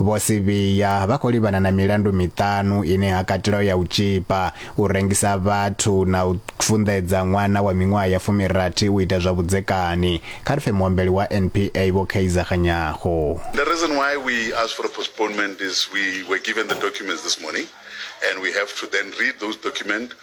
Vho Sibiya vha khou livhana na milandu miṱanu ine ha katelaho ya u tzhipa, u rengisa vhathu na u funḓedza ṅwana wa miṅwaha ya fumirathi u ita zwa vhudzekani, kha ri pfe muambeli wa NPA Vho Kaizer Kganyago. The reason why we asked for a postponement is we were given the documents this morning and we have to then read those document.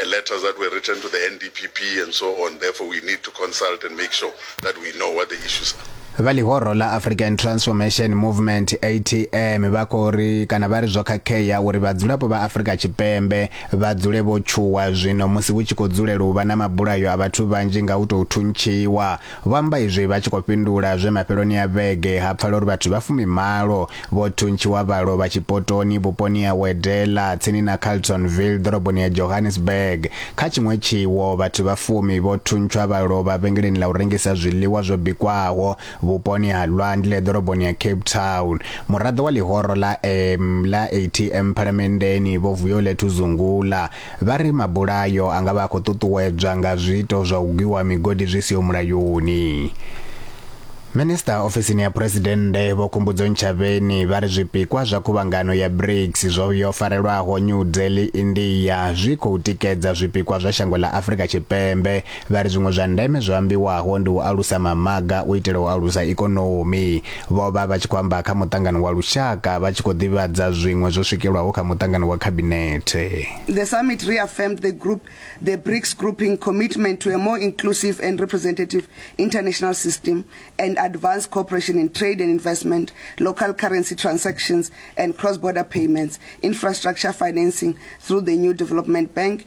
and letters that were written to the NDPP and so on. Therefore, we need to consult and make sure that we know what the issues are. vha ḽihoro ḽa african transformation movement atm vha khou ri kana vha ri zwo khakhea uri vhadzulapo vha afrika tshipembe vha dzule vho tshuwa zwino musi hu tshi khou dzulela u vha na mabulayo a vhathu vhanzhi nga u tou thuntshiwa Vho amba izwi vha tshi khou fhindula zwe mafheloni a vhege ha pfala uri vhathu vha fumimalo vho thuntshiwa vha lovha tshipotoni vhuponi ha Wedela tsini na Carltonville ḓoroboni ya Johannesburg. Kha tshiṅwe tshiwo, vhathu vha fumi vho thuntshwa vha lovha vhengeleni ḽa u rengisa zwiḽiwa zwo bikwaho vhuponi ha Lwandle ḓoroboni ya Cape Town. Muraḓo wa ḽihoro ḽa M ḽa ATM Phalamenndeni Vho Vuyolethu Zungula Vha ri mabulayo a nga vha a khou ṱuṱuwedzwa nga zwiito zwa u gwiwa migodi zwi siho mulayoni. Minisiṱa ofisini ya Phresidennde Vho Khumbudzo Ntshavheni vha ri zwipikwa zwa khuvhangano ya BRICS zwo yo farelwaho New Delhi, India zwi khou tikedza zwipikwa zwa shango ḽa Afrika Tshipembe Vha ri zwiṅwe zwa ndeme zwo ambiwaho ndi u alusa mamaga u itela u alusa ikonomi. Vho vha vha tshi khou amba kha muṱangano wa lushaka vha tshi khou ḓivhadza zwiṅwe zwo swikelwaho kha muṱangano wa khabinethe. The summit reaffirmed the group, the BRICS grouping commitment to a more inclusive and representative international system and advance cooperation in trade and investment, local currency transactions and cross-border payments, infrastructure financing through the new development bank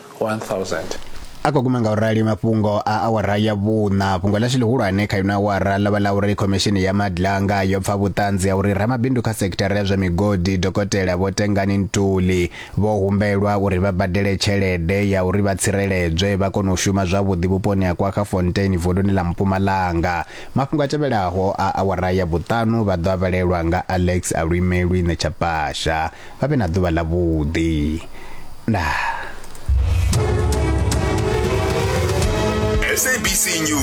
1000. A khou guma nga u rali mafhungo a awara ya vhuṋa. Fhungo ḽashu ḽihulwane kha ino awara ḽo vha ḽa uri Khomishini ya Madlanga yo pfa vhuṱanzi ha uri ramabindu kha sekithara ya zwa migodi Dokotela Vho Tengani Ntuli vho humbelwa uri vha badele tshelede ya uri vha tsireledzwe vha kone u shuma zwavhuḓi vhuponi ha KwaGafontein vunduni ḽa Mpumalanga. Mafhungo a tevhelaho a awara ya vhuṱanu vha ḓo a vhalelwa nga Alex Alwimelwi Netshaphasha. vha vhe na ḓuvha ḽa vhuḓi ndaa SABC News